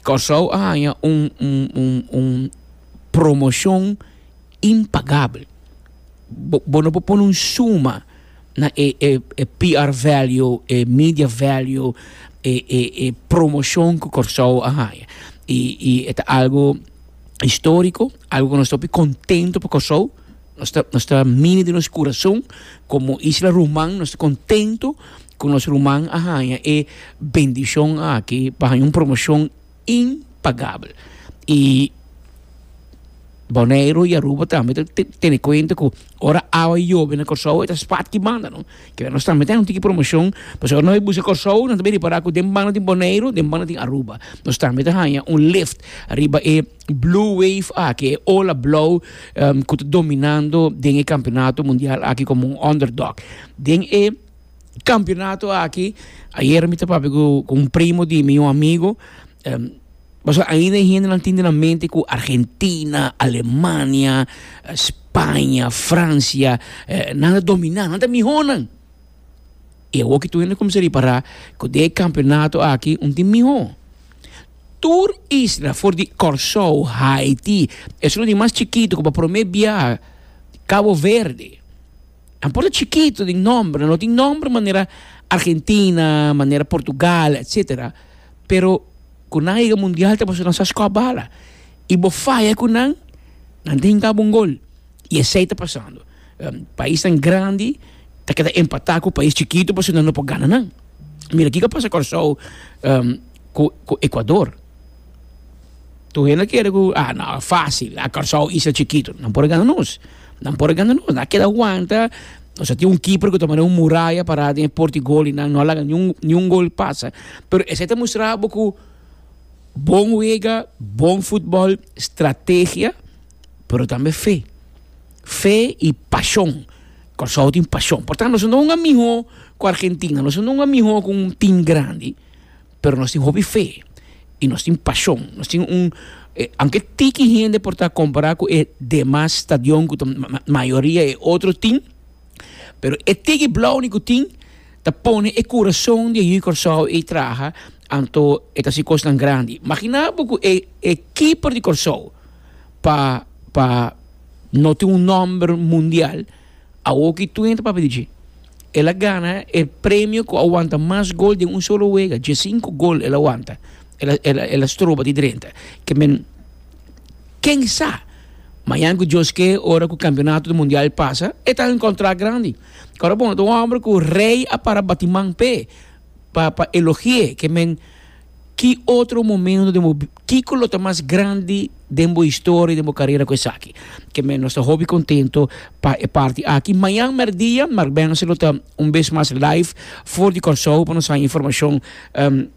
Kòrsou a haña un un promoshon impagabel. Bo bo no por pone un suma na e e e PR value, e media value, e e e promoshon ku Kòrsou a haña. I i e ta algu istoriko, algu ku nos ta hopi kontento pa Kòrsou. Nos ta nos ta mini den nos kurason komo isla ruman nos ta kontentu ku nos ruman a haña e bendishon aki pa haña un promoshon impagabel i Boneiru i Aruba tambe ta tene kuenta ku ora awa i yobe na Kòrsou e ta spat ki banda no kila nos tambe ta haña un tiki promoshon pasobra ora nos bai buska Kòrsou nan ta bai ripará ku den banda tin Boneiru den banda tin Aruba nos tambe ta haña un lift riba e Blue wave aki, e ola blou ku ta dominando den e kampionato mundial aki komo un underdog. Den e kampionato aki, ayer mi ta papia ku un primo di mi, un amigo, pasobra ainda e hendenan tin den nan mente ku Argentina, Alemania, Spaña, Francia, nan a dominá, nan ta mihónan. I awor ki tur hende kuminsá ripará ku den e kampionato aki un tin mihó. Tur isla for di Kòrsou, Haiti, esuna di mas chikitu ku pa promé bia Kabo Verde, nan por ta chikitu den nòmber, nan no tin nòmber manera Argentina, manera Portugal, etcétera, pero ku nan a yega mundial ta pasobra nan sa skòp bala. I bo faya ku nan, nan ta hinká bo un gol. Y esey ta pasando. Paisnan grandi ta keda empata cu pais chikitu pasobra nan no por gana nan. Mira kico a pasa Corsow cu Ecuador. Tur hende ta kere cu ah no a facil, ah Corsow isla chikitu. Nan por a gana nos. Nan por a gana nos. Nan a keda wanta. Nos a tin un keeper cu ta manda un muraya para den e porti golinan. No a laga niun gol pasa. Pero esey ta mustra abo cu bon wega, bon futbol, strategia pero tambe fe. Fe i pashon. Kòrsou tin pashon. Por tantu nos no un amiho ku Argentina, nos no un amiho ku un tim grandi, pero nos tin hopi fe i nos tin pashon. Nos tin un, aunke tiki hende por ta kompará ku e demas stadion ku ta mayoria e otro tim, pero e tiki blòuni ku tin ta pone e kurason di e yu Kòrsou ei traha, anto e ta hasi kosnan grandi. Maginá bo ku e e keeper di Kòrsou. pa pa no tin un nomber mundial awor ki Twin ta papia di dje el a gana e premio ku a wanta mas gol den un solo wega dje sinku gol el a wanta el a el a el a stroba di drenta ke men ken sa mañan ku Dios ke ora ku kampionato mundial pasa e ta den kontrakt grandi kora bon ta un homber ku rei a para bati man p'e pa pa elogie ke men. Ki otro momento den bo kiko lo ta mas grandi den bo historia den bo carera cu esaki? Ke men nos ta hopi contento pa e parti aki. Mañan merdia Markbense lo ta un bes mas live for di Corsou pa nos haya informacion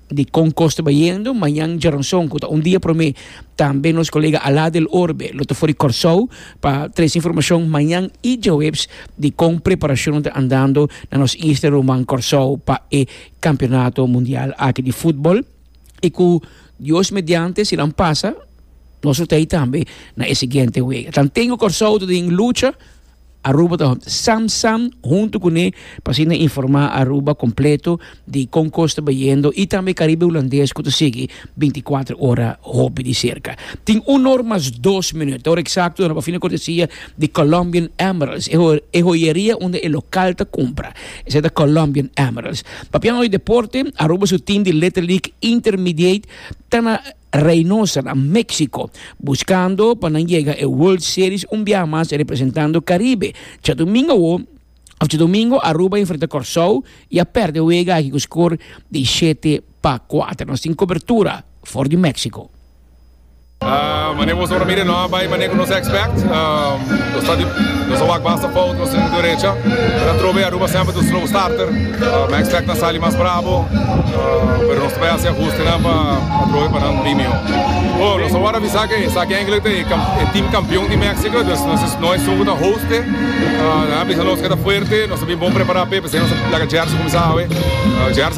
di con cos ta bayendo. Mañan Djaranson cu ta un dia prome tambe nos colega Ala del Orbe lo ta for di Corsou pa trece informacion mañan y Djaweps di con preparacionnan ta andando na nos Easter Roman Corsou pa e Campeonato Mundial aki di futbol y cu Dios mediante si nan pasa nos lo ta ahí tambe na e siguiente wega. Tantengo Corsou ta den lucha Aruba ta sam sam hunto cu ne pa asina informa Aruba completo di con cos ta bayendo y tambe Caribe Hulandes cu ta sigui 24 ora hopi di cerca. Tin un or mas dos minut, ora exacto na bafina cortesia di Colombian Emeralds, e joyeria unda e local ta cumpra. Esei ta Colombian Emeralds. Papia nos di deporte, Aruba su team di Little League Intermediate ta na Reynosa, na Mexico, buscando pa nan yega e World Series un biaha mas representando Caribe. Djadomingo awo, of djadomingo, Aruba a enfrenta Corsou y a perde e wega aki cu score di shete pa cuater. Nos tin cobertura for di Mexico. Mane boso ta mira no bai mane ku nos expect nos a wak basta fout nos tin derecha pero a trobe Aruba semper ta un slow starter mi expect nan sali mas brabo pero nos ta bai hasi ahustenan pa a trobe pa nan bin mihó oh nos a wòrdu avisa ke esaki engelik ta e tim kampion di Mexico dus no e sun ku ta hoste nan a bisa nos ke ta fuerte nos a bin bon prepara p'e p'esei nos a plaka Jersey kuminsá awe Jersey.